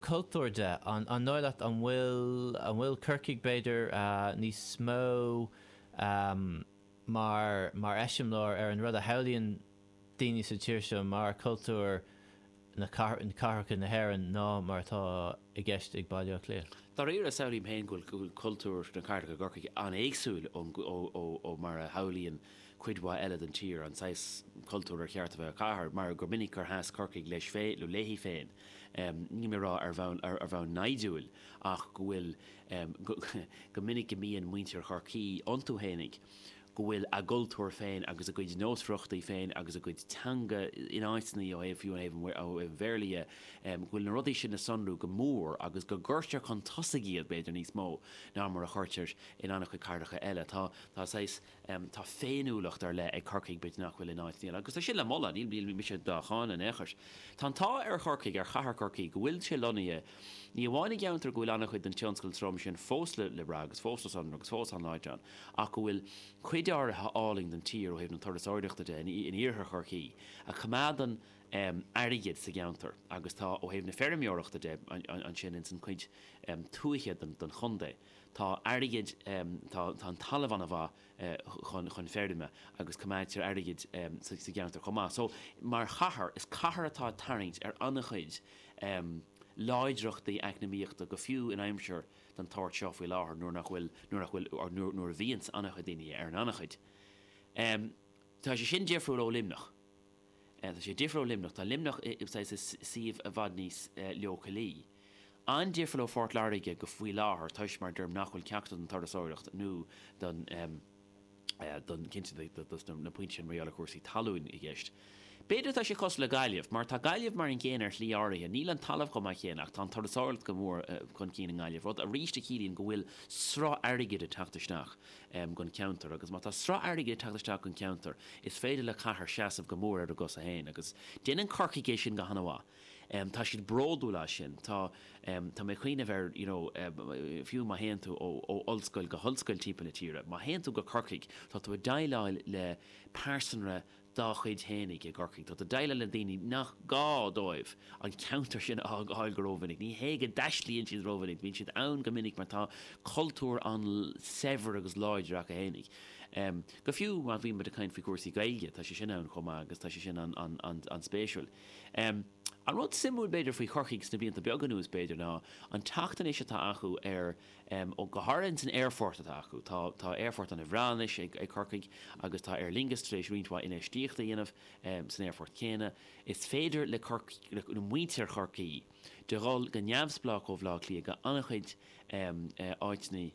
cultúr de. An dóigh leat an bhfuil, an bhfuil Corcaigh, b'fhéidir, níos mó mar, mar eiseamláir ar an rud a shamhlaíonn daoine sa tír seo mar cultúr cathracha na hÉireann ná mar atá i gceist ag Baile Átha Cliath? Dáiríre, samhlaím féin go bhfuil, go bhfuil cultúr na cathracha i gCorcaigh an-éagsúil ó, ó, ó, ó mar a shamhlaíonn cuid mhaith eile den tír, an saghas cultúr ar cheart a bheith ar chathair, mar gur minic gur sheas Corcaigh leis féin, nó léi féin, níl mé a rá ar bhonn naimhdiúil, ach go bhfuil, go minic go mbíonn muintir Chorcaí iontu fhéinig, go bhfuil a gcultúr féin agus a gcuid nósmhaireachtaí féin agus a gcuid teanga ina bhfaiteanna, ó thaobh, fiú ó thaobh an Bhéarla dhe, go bhfuil na rudaí sin le sonrú go mór agus go gcuirtear chun tosaigh iad, b'fhéidir, níos mó ná mar a chuirtear in an-chuid cathracha eile. Tá saghas. Tá féiniúlacht ar leith ag Corcaigh, b'fhéidir nach bhfuil in áit eile, agus tá sin le moladh, níl mise dá cháineadh in aon chor. Tá an t-ádh ar Chorcaigh, ar chathair Chorcaí, go bhfuil sé lonnaithe ní amháin i gceantar go bhfuil an-chuid den tionscal trom sin fós le brath agus fós le sonrú agus fós an-láidir ann, ach go bhfuil cuid áirithe an-álainn den tír, ó thaobh na turasóireachta de, in iarthar Chorcaí, a choimeádann airgead sa gceantar, agus tá ó thaobh na feirmeoireachta de ansin ins an chuid tuaithe den chontae. Tá airgead, tá an talamh ana mhaith chun feirme agus coimeádtar airgead sa gceantar chomh maith. So, mar chathair, is cathair atá ag tarraingt ar an-chuid láidreachtaí eacnamaíochta, go fiú in aimsir den tsórt seo faoi láthair, nuair nach bhfuil, nuair nach bhfuil, or nuair, nuair a bhíonns an-chuid daoine ar an ngannchuid. Tá sé sin difriúil ó Luimneach. Tá sé difriúil ó Luimneach. Tá Luimneach i suíomh i bhfad níos leochailí. An-difriúil ó Phort Láirge go, faoi láthair, toisc, mar a deirim, nach bhfuil ceachtar den turasóireacht nó don, don, cinnte dos na pointí sin mar gheall ar chúrsaí talúin i gceist. B'fhéidir tá sé cosúil le Gaillimh, mar tá Gaillimh mar an gcéanna ar shlí áirithe. Níl an talamh chomh maith céanna ach tá an turasóireacht go mór chun cinn i nGaillimh, rud arís a chiallaíonn go bhfuil sruth airgid ag teacht isteach. gon cheantar. Agus má tá sruth airgid ag teacht isteach gon cheantar, is féidir le cathair seasamh go mór ar a gcosa féin. Agus déanann Corcaigh é sin go hana-mhaith. Tá siad bródúil as sin. Tá tá mé ag cuimhneamh ar you know fiú má théann tú ó ó ollscoil go hollscoil timpeall na tíre, má théann tú go Corcaigh, tá tú ag déileáil le pearsanra dá chuid fhéinig i gCorcaigh. Tá tú ag deighleáil le daoine nach gá dóibh an ceantar sin a fhágáil go rómhinic. Ní hé nach dtaistlíonn siad rómhinic, bíonn siad ann go minic mar tá cultúr an-saibhir agus láidir acu fhéinig. Go fiú má bhíonn muid ag caint faoi chúrsaí Gaeilge, tá sé sin ann chomh maith agus tá sé sin an-spéisiúil. An rud suimiúil b'fhéidir faoi Chorcaigh sna blianta beaga anuas b'fhéidir ná an teacht anois atá acu ar go háirithe san aerfort atá acu. Tá aerfort an-bhreá anois ag Corcaigh agus tá Aer Lingus tar éis roinnt mhaith infheistíochta a dhéanamh san aerfort céanna. Is féidir le muintir Chorcaí dhul go neamhspleách ó Bhleá Cliath go an-chuid áiteanna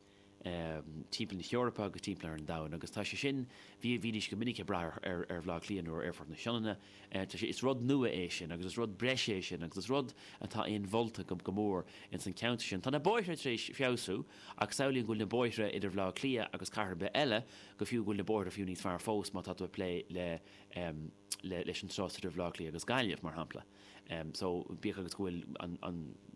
timpeall na hEorpa agus timpeall ar an domhain agus tá sé sin, bhídís go minic ag brath ar Bhleá Cliath nó ar Aerfort na Sionainne. tá sé, is rud nua é sin agus is rud breise é sin agus is rud atá inmholta go mór ins an cheantar sin. Tá na bóithre tar éis feabhsú ach samhlaím go bhfuil na bóithre idir Bhaile Átha Cliath agus cathair ar bith eile, go fiú go bhfuil na bóithre fiú níos fearr fós má tá tú ag plé le leis an turas idir Bhaile Átha Cliath agus Gaillimh mar shampla. So bíodh agus go bhfuil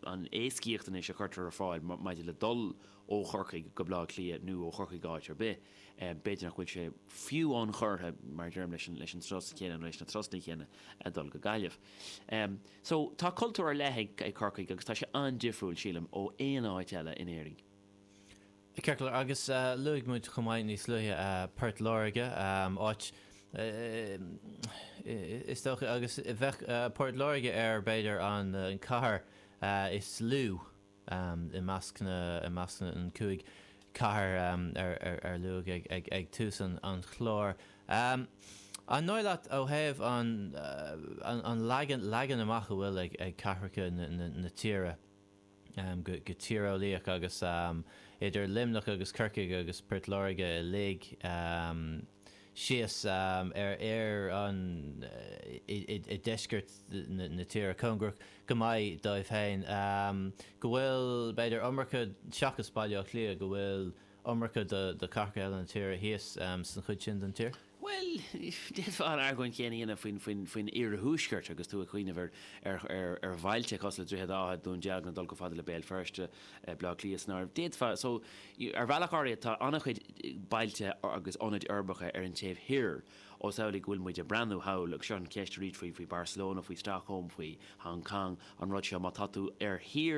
an éascaíocht anois a chuirtear ar fáil maidir le dul ó Chorcaigh go Baile Átha Cliath nó ó Chorcaigh go áit ar bith, b'fhéidir nach bhfuil sé fiú ionchurtha, mar a deirim, leis an turas chéanna nó leis na turais chéanna a dhul go Gaillimh. So, tá cultúr ar leith ag Corcaigh agus tá sé an-difriúil, sílim, ó aon áit eile in Éirinn. Cinnte. Agus luaigh muid chomh maith níos luaithe Port Láirge, is dócha, agus bheadh Port Láirge ar, b'fhéidir, an cathair is lú, I measc, i measc na gcúig chathair ar luaigh ag tús an chláir, an dóigh leat, ó thaobh an leagan amach a bhfuil ag cathracha na tíre, go tíreolaíoch agus idir Luimneach agus Corcaigh agus Port Láirge uilig, síos ar, ar an, i deisceart na tíre, cóngarach go maith dóibh féin, go bhfuil, b'fhéidir, iomarca, seachas Baile Átha Cliath, go bhfuil iomarca de chathracha eile na tíre thíos san chuid sin den tír? Bhuel, d'fhéadfá an argóint chéanna a dhéanamh faoin iarthuaisceart agus tú ag cuimhneamh ar bhailte cosúil le Droichead Átha, Dún Dealgan, ag dul chomh fada le Béal Feirste, Bleá Cliath san áireamh. D'fhéadfá, so, ar bhealach áirithe tá an-chuid bailte agus ionaid uirbeacha ar an taobh thoir, ós amhlaidh go bhfuil muid ag breathnú thall, agus seo an cheist arís faoi Barcelona, faoi Stockholm, faoi Hong Cong, an rud seo, má tá tú ar thír,